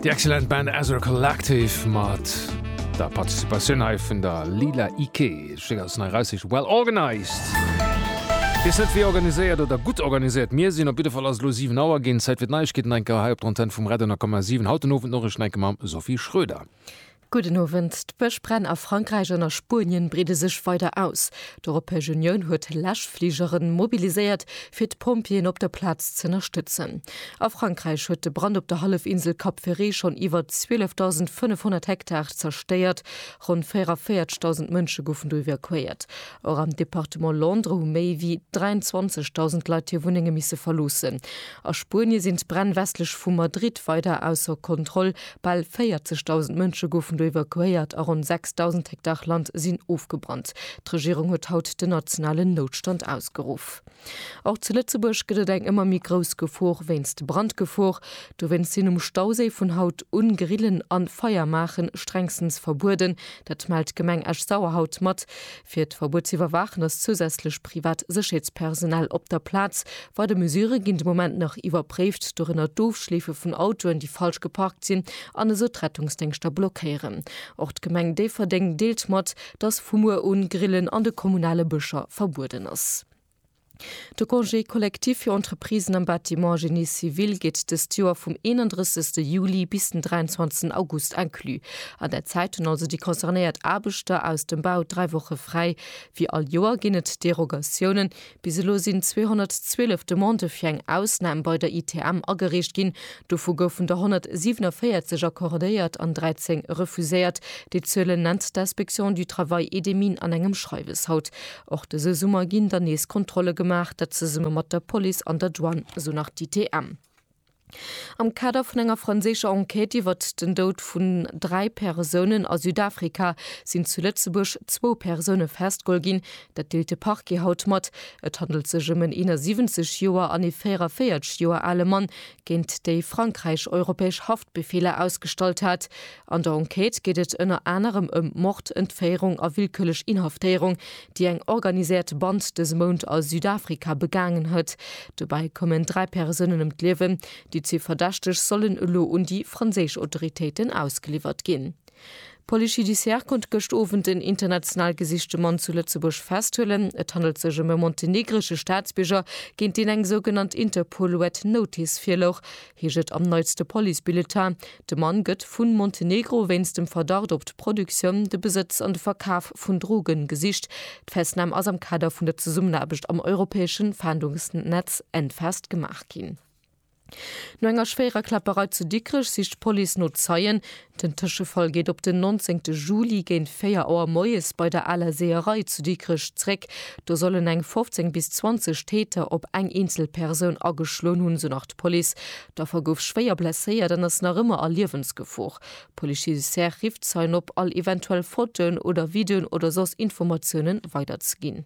Die excellent Band Ezra Collective mat der Participatioun hei vun der Lila Ike schick als nei Reisseg well organized. Wees net wie organiséiert oder gutt organisiert mir sinn, op jidde Fall ass et elo 7 Auer ginn, Zäit fir d'Neiegkeeten enker hei op der Antenne vum Red 100,7. Haut den Owend Noriichten enke mam Sophie Schröder. Gudden Owend. D'Bëschbränn a Frankräich an a Spuenien breede sech weider aus. D'Europäesch Unioun huet Läschfligere mobiliséiert, fir d'Pompjeeën op der Plaz z'ënnerstëtzen. A Frankräich huet de Brand op der Hallefinsel Cap Ferret schonn iwwer 12.500 Hektar zerstéiert. Ronn 44.000 Mënsche goufen do evakuéiert. Och am Departement Londres hu méi wéi 23.000 Leit hir Wunnenge misse verloossen. A Spuenie sinn d'Bränn westlech vu Madrid weider ausser Kontroll, Bal 40.000 Mënsche goufen do evakuéiert a ronn 6.000 Hektar Land sinn ofgebrannt. D'Regierung huet haut den nationalen Noutstand ausgeruff. Och zu Lëtzebuerg gëtt et eng ëmmer méi grouss Gefor wéinst Brandgefor. Dowéinst sinn um Stauséi vun haut un Grillen an Feier maachen strengstens verbueden. Dat mellt d'Gemeng Esch-Sauer haut mat. Fir d'Verbuet ze iwwerwaachen ass zousätzlech privat Sécherheetspersonal op der Plaz. Weider Mesurë ginn de Moment nach iwwerpréift, dorënner d'Ofschleefe vun Autoen, déi falsch geparkt sinn an esou d'Rettungsdéngschter blockéieren. Och d'Gemeng Déifferdeng deelt mat, dass vu muer un Grillen an de kommunale Bëscher verbueden ass. De Congé collectif fir Entreprisen am Bâtiment Génie civil geet dëst Joer vum 31 Juli bis den 23 August inclus. An där Zäit hunn also déi concernéiert Aarbechter aus dem Bau dräi Woche fräi. Wéi all Joer ginn et Derogatiounen. Bis elo sinn 212 Demandë fir eng Ausnam bei der ITM agereecht ginn. Dovu goufen der 147 accordéiert an 13 refuséiert. Déi Zuelen nennt d'Inspection du travail et des mines an engem Schreiwes haut. Och dëse Summer ginn dann nees Kontrolle gemaach, dat zesumme mat der Police an der Douane, esou nach d'ITM. Am Kader vun enger franséischer Enquête iwwert den Doud vun dräi Persounen a Südafrika sinn zu Lëtzebuerg zwou Persoune festgeholl ginn. Dat deelt de Parquet haut mat. Et handelt sech ëm en 71 Joer an ee 44 Joer ale Mann, géint déi Frankräich europäesch Haftbefeeler ausgestallt hat. An der Enquête geet et ënner anerem ëm Mord, Entféierung a willkürlech Inhaftéierung, déi eng organiséiert Band dëse Mount a Südafrika begaangen huet. Dobäi koumen dräi Persounen ëm d'Liewen. Déi zwee Verdächteg sollen elo un déi franséisch Autoritéiten ausgeliwwert ginn. D'Police judiciaire konnt gëscht Owend en international gesichte Mann zu Lëtzebuerg festhuelen. Et handelt sech ëm e montenegresche Staatsbierger, géint deen eng sougenannt Interpol Red Notice virlouch. heescht et am neitste Police-Bulletin. De Mann gëtt vu Montenegro wéinst dem Verdacht op d'Produktioun, de Besëtz an de Verkaf vun Droge gesicht. D'Festnam ass am Kader vun der Zesummenaarbecht am europäesche Faandungsnetz Enfast gemaach ginn. No enger schwéierer Kläpperei zu Dikrech sicht d'Police no Zeien. Den Tëschefall geet op den 19 Juli géint 4 Auer moies bei der Aler Seeërei zu Dikrech zréck. Do sollen eng 15 bis 20 Täter op eng eenzel Persoun ageschloen hunn, esou nach d'Police. D'Affer gouf schwéier blesséiert an ass nach ëmmer a Liewensgefor. D'Police judiciaire rifft Zeien op, all eventuell Fotoen oder Videoen oder soss Informatiounen weiderzeginn.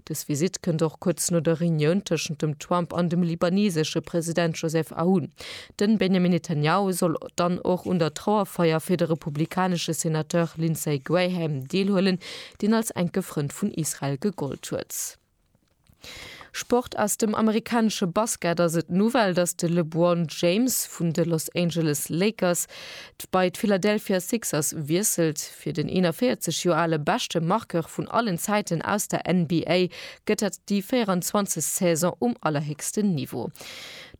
Dës Visitt kënnt och kuerz no der Reunioun tëschent dem Trump an dem libanesesche President Joseph Aoun. Den Benjamin Netanyahu soll dann och un der Trauerfeier fir de republikanesche Senateur Lindsey Graham deelhuelen, deen als enke Frënd vun Israel gegollt huet. Sport Aus dem amerikanesche Basket ass et d'Nouvelle, dass de LeBron James vun de Los Angeles Lakers bei d'Philadelphia Sixers wiesselt. Fir den 41 Joer ale beschte Marqueur vun allen Zäiten aus der NBA gëtt dat déi 24. Saison um allerhéchsten Niveau.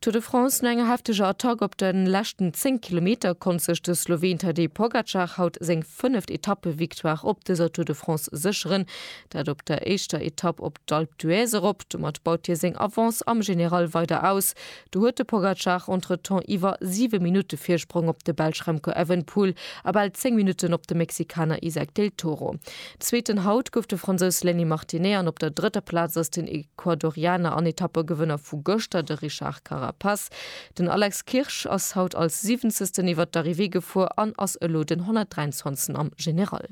Tour de France, No enger hefteger Attack op de leschten 10 Kilometer konnt sech de Sloween Tadej Pogacar haut seng fënneft Etappevictoire op dëser Tour de France sécheren. Dat op der éischter Etapp op d'Alpe d'Huez erop. Domat baut hie seng Avance am General weider aus. Do huet de Pogacar entretemps iwwer 7 Minutte Virsprong op de Belsch Remco Evenepoel a bal 10 Minutten op de Mexikaner Isaac Del Toro. Zweeten haut gouf de Fransous Lenny Martinet an op der drëtter Plaz ass den Ecuadorianer an Etappegewënner vu gëschter, de Richard Carapaz. Den Alex Kirsch ass haut als siwenzegsten iwwert d'Arrivée gefuer an ass elo den 123. am General.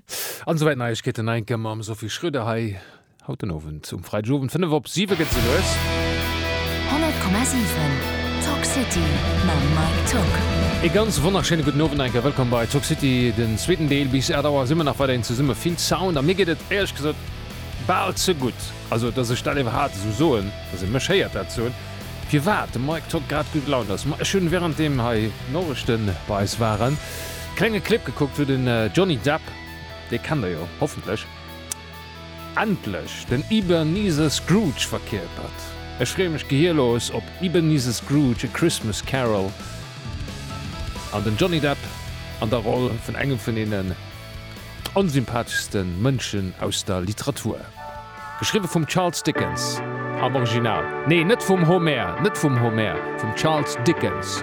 An esouwäit Neiegkeeten, Neinkëmme mam Sophie Schröder hei. Haut den Owend um Freidegowend 5 op 7 gëtt se lues. 100,7 Talk City mam Mike Tuck. E ganz wonnerschéine gudden Owend, enke wëllkomm bei Talk City, den zweeten Deel. Bis 8 Auer si mir nach weiderhin zesumme, vill Sound a mir geet et éierlech gesot bal ze gutt, also dass ech dat iwwerhaapt esou soen, dass ee mech héiert dat soen, firwat de Mike Tuck grad gutt gelaunt ass. Ma ech hunn, während deem hei d'Norechte bei eis waren, klenge Clip gekuckt, wou den Johnny Depp, dee kennt der jo hoffentlech, Endlech den Ebeneezer Scrooge verkierpert. Ech freeë mech gehirlos op Ebeneezer Scrooge, A Christmas Carol an den Johnny Depp an der Roll vun engem vun deenen onsympatheschste Mënschen aus der Literatur. Geschriwwe vum Charles Dickens am Original, nee net vum Homer, net vum Homer, vum Charles Dickens.